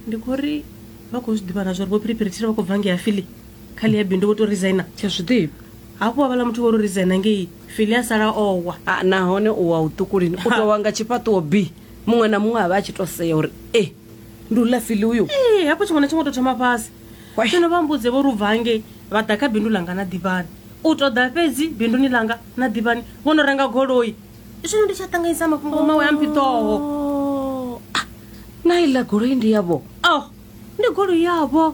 ndi khou ri vha khou zwi ḓivha na zwa uri vho phiriphirithira vha khou bva ngei afili kha ḽi ya bindu vho to resigner tsha zwi ḓivha hafhu wa vhala muthu vho ro resigner ngei fili a sala owa ah, nahone u wa u ṱukulini u tou wa nga tshifhaṱuwo b muṅwe na muṅwe a vha a tshi to sea uri e ndi u ḽa fili uyo ee hafho tshiṅwe na tshiṅwe to thoma fhasi Wai. zwino vha mbudze vho ri u bva hangei vha ḓa kha bindu langa na ḓivhani u ṱoḓa fhedzi binduni langa na ḓivhani vho no renga goloi zwino ndi tsha ṱanganyisa mafhungo mawe a mphiṱoho Oh, ah, na iḽa goloi ndi yavho oh ndi goloi yavho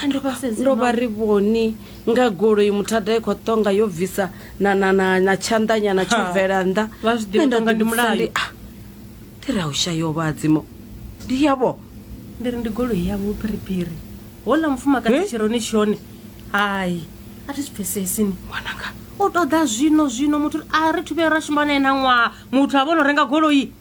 ndo vha sedzi ndo vha ri vhoni nga goloi muthada i khou ṱonga yo bvisa na na na na tshanḓanyana tsho Ha, bvela nnḓa vha zwi ḓivha Nṋe nda ṱonga ndi ḓivhudzisa mulayo. ndi, ah, ndi ra u shayo vhadzimo ndi yavho ndi ri ndi goloi yavho phiriphiri hola mufumakadzi Eh? tshironi tshone hai a thi zwi pfesesi ni ṅwananga u ṱoḓa zwino zwino muthu a ri thu vhuya ra shuma nae na ṅwaha muthu a vhono renga goloi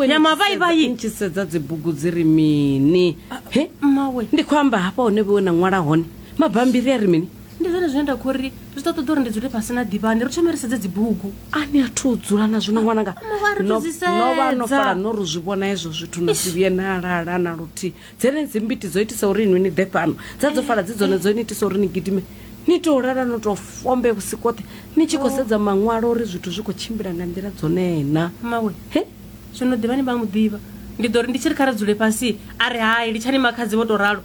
ya mavaivai tshi sedza dzibugu dzi ri mini ah, he mmawe ndi khou amba hafha hone vhewe na ṅwala hone mabambiri a ri mini ndi zwone zwine nda khori zwi ḓo ṱoḓa uri ndi dzule fhasi na ḓivhani ri thome ri sedze dzibugu a ni a thu dzula na zwino ṅwananga ah, novha no fala no ri zwi vhona hezwo zwithu na si vhuye na lala na luthihi Dzenedzi mbiti dzo itisa uri inwi ni ḓe fhano, dza dzo fala dzi dzone dzo ni itisa uri ni gidime. Ni tou lala no tou fombe vhusiku hoṱhe ni tshi khou sedza maṅwalo uri zwithu zwi khou tshimbila nga nḓila dzone na. Mmawe, He? Zwino ḓivha ni vha mu ḓivha. Ndi ḓo ri ndi tshi ri kha ri dzule fhasi, a ri hai, litshani makhadzi vho tou ralo.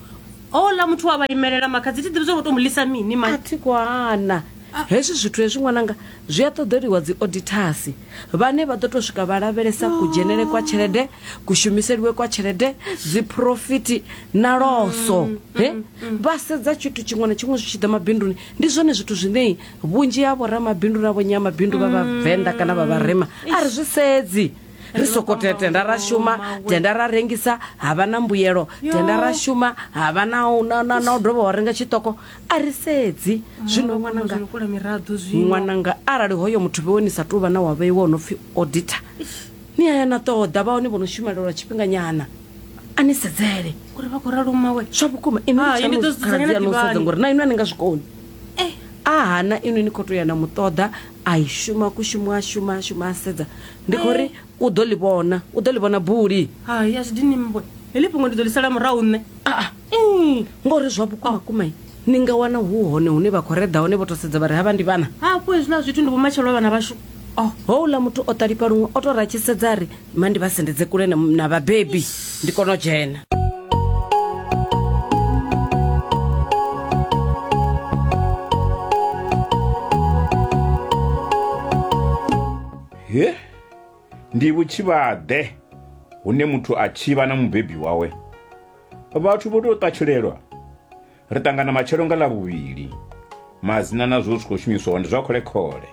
Houḽa muthu we a vha imelela, makhadzi thi ḓivhi zwa uri vho tou mu ḽisa mini, mai. A thi khou hana. Hezwi zwithu hezwi ṅwananga zwi a ṱoḓeliwa dziodithasi vhane vha ḓo tou swika vha lavhelesa kudzhenele kwa tshelede, kushumiseliwe kwa tshelede, dziphurofiti na loso. He vha sedza tshithu tshiṅwe na tshiṅwe zwi tshi ḓa mabinduni. Ndi zwone zwithu zwine vhunzhi ha vhoramabindu na vhonyamabindu vha Vhavenḓa kana vha Vharema a ri zwi sedzi. Ri sokou tea tenda ra shuma, tenda ra rengisa ha vha na mbuyelo, tenda ra shuma ha vha na u dovha wa renga tshiṱoko. a ri sedzi zwino ṅwananga ṅwananga arali hoyo muthu vhewe ni sa tou vha na wa vheiwa o no pfhi auditor ni aya na ṱoḓa vha hone vho no shumela lwa tshifhinganyana a ni sedzele uri vha khou ralo mmawe zwa vhukuma inokhaladzi ngori na inwe a ni nga zwikoni eh. a hana inwe ni khou tou ya na muṱoḓa a i shuma kushumo a shuma a shuma a sedza ndi khou ri eh. u ḓo ḽi vhona u ḓo ḽi vhona buli hai a zwi dini mmbwe heḽi fhungo ndi ḓo ḽi sala murahu nṋe aa Mm, ngori zwa vhukuma kuma ni nga wana hu hone hune vha khou reḓa hone vho to sedza vha ri havha ndi vhana hafho hezwiḽa zwithu ndi vhumatshelo a vhana vhashu o houḽa muthu o ṱalifha luṅwe o tou ratshisedza a ri ma ndi vha sendedze kule na vhabebi ndi kona u dzhena he ndi vhutshivhaḓe hune muthu a tshivha na mubebi wawe Vhathu vho tou ṱatshulelwa. Ri ṱangana matshelo nga Ḽavhuvhili. Madzina na zwo zwi khou shumiswa hone zwa khole-khole.